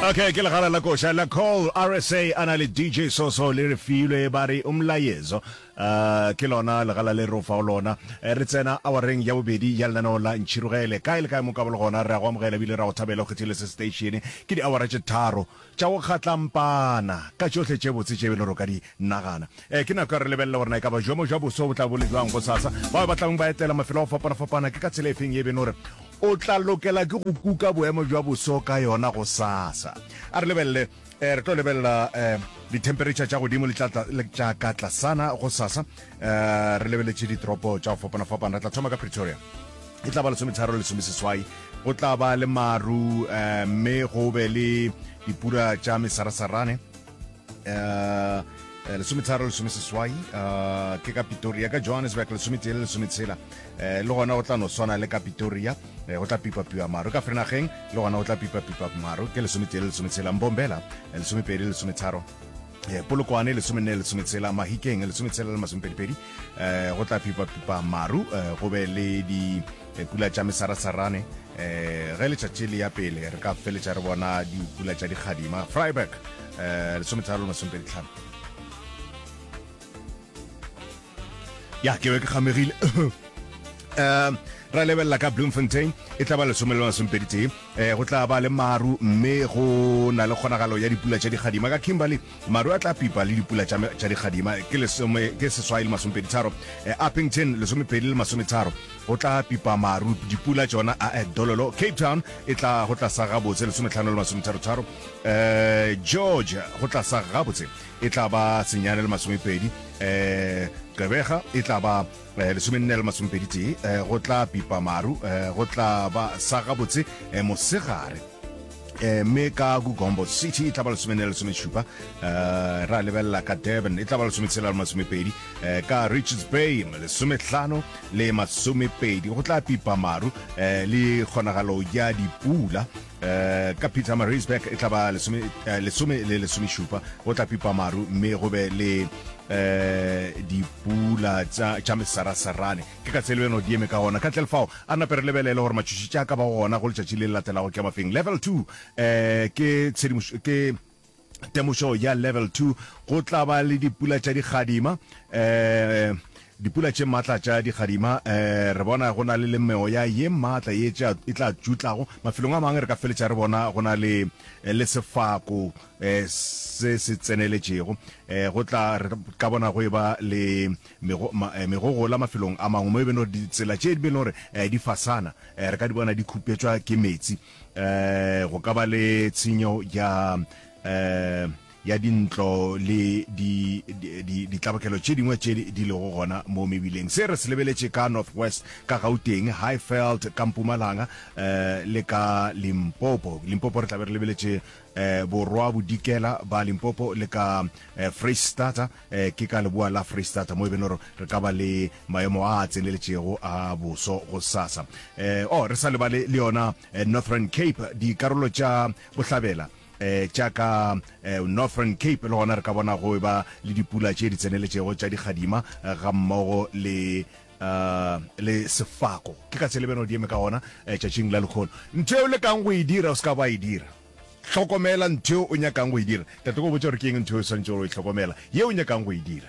okay ke legala la koša la call rsa a na le dj soso le re filwe ba re umlayezo um ke lona legala le re fao lona eh, re tsena awareng ya bobedi ya lenaneo la ntšhirogele kae le kae mo kabolo gona re a go amogela ebile re a go thabela go kgethile se station ke diawara tše tharo tša go kgatlampana ka tšohle tše botse tše e le ro ka di Nagana, ee, ke nako ya re lebelele gore na e ka ba jomo jwa boso bo tla bo le jwang gosasa. Bao ba tlabong ba etela mafelo a go fapana-fapana, ke ka tsela efeng ye e beno re o tla lokela ke go kuka boemo jwa boso ka yona gosasa? A re lebelele, ee, re tlo lebelela ee, dithemperetšha tša godimo le tša tla, le tša ka tlasana gosasa. Ee, re lebeletše ditoropo tša go fapana-fapana. Re tla thoma ka Pretoria. E tla ba lesometharo le lesomeseswai. Go tla ba le maru, ee, mme go be le dipula tša mesarasarane. uh, Eh, lesometharo lesome seswai eh, ke ka pitoria ka johannesburg lesometee le lesometshela eh, le gona go tla no swana le ka pitoria go tla pipapiwa maro ka frenageng le gona go tla pipapipa maro ke lesometee le lesometshela mbombela lesomepedi le lesometharo polokwane lesomenne lesometshela mahikeng lesometshela le masomepedipedi go tla pipapipa maru go be le di Pula tša mesarasarane um ge letšatši le ya pele re ka feletša re bona dipula tša dikgadima freiburg um lesometharo le masomepedi tlhano ya ke be ke kgamegile um ra lebelela ka bloemfontein e tla ba lesome le masomepedi tee um go tla ba le maru mme go na le kgonagalo ya dipula tša dikgadima ka kimberley Maru a tla pipa le dipula tša me tša dikgadima, ke lesome, ke seswai le masomepeditharo, eh, Upington, lesomepedi le masometharo, go tla pipa maru, dipula tšona, a eh, Dololo, Cape Town, e tla go tla sa gabotse, lesometlhano le masometharotharo, eh, George, go tla sa gabotse, e tla ba senyane le masomepedi, eh, Gqebega, e tla ba Eh, lesomenene le masomepedi tee eh, go tla pipa maru eh, go tla ba sa gabotse mosegare mme ka gugombo city e tla ba lesomenene le lesomešupa ra lebelela ka durban e tla ba lesometshela le masomepedi ka richards bay lesometlhano le masomepedi go tla pipa maru le kgonagalo ya dipula Eh, ka peter marisburg e tlaba lesome eh, lesome le lesomešupa go tla pipa maru mme go be le eh dipula tša tša mesarasarane ke ka tselo eno di eme ka gona ka tle lefao a nape re lebelele gore matšhoši tša ka ba gona go letšatši le le latelago ke mafeng level 2 eh ke tshedimošo ke temošo ya Level Two, go tla ba le dipula tša digadima, um dipula tše maatla tša digadima um re bona go na le le meoya ye maatla ye e tla tšutlago mafelong a mangwe re ka feletša re bona go na le eh, le sefako um se se tseneletšego um go tla re ka bona go e ba le eh, megogola mafelong a mangwe mo e beno ditsela tše di be le gore di fasana um re ka di bona di khupetšwa ke metsi eh go ka ba le tshenyo ya eh ya dintlo le ditlabakelo tše dingwe tše di lego gona mo mebileng se re se lebeletše ka northwest ka gauteng highfeld ka mpumalanga um le ka limpopo limpopo re tlabe re lebeletše um borwa bodikela ba limpopo le ka um eh, freestata um ke ka leboa la freistata mo e beno re re ka ba le maemo a a tseneletšego a boso go sasa um o re sa lebale le yona eh, northern cape dikarolo tša bohlabela eh tša ka eh, northern cape le gona re ka bona go e ba le dipula tše di tseneletšego tša dikgadima eh, ga mmogo le uh, le sefako ke ka tshelebeno di eme ka gona eh, tšatšing la lekgono ntho eo lekang go e dira o se ka ba e dira Hlokomela ntho yeo o nyakang go e dira. Tate, ke go botša gore ke eng ntho yeo o swanetšego go e hlokomela, yeo o nyakang go e dira?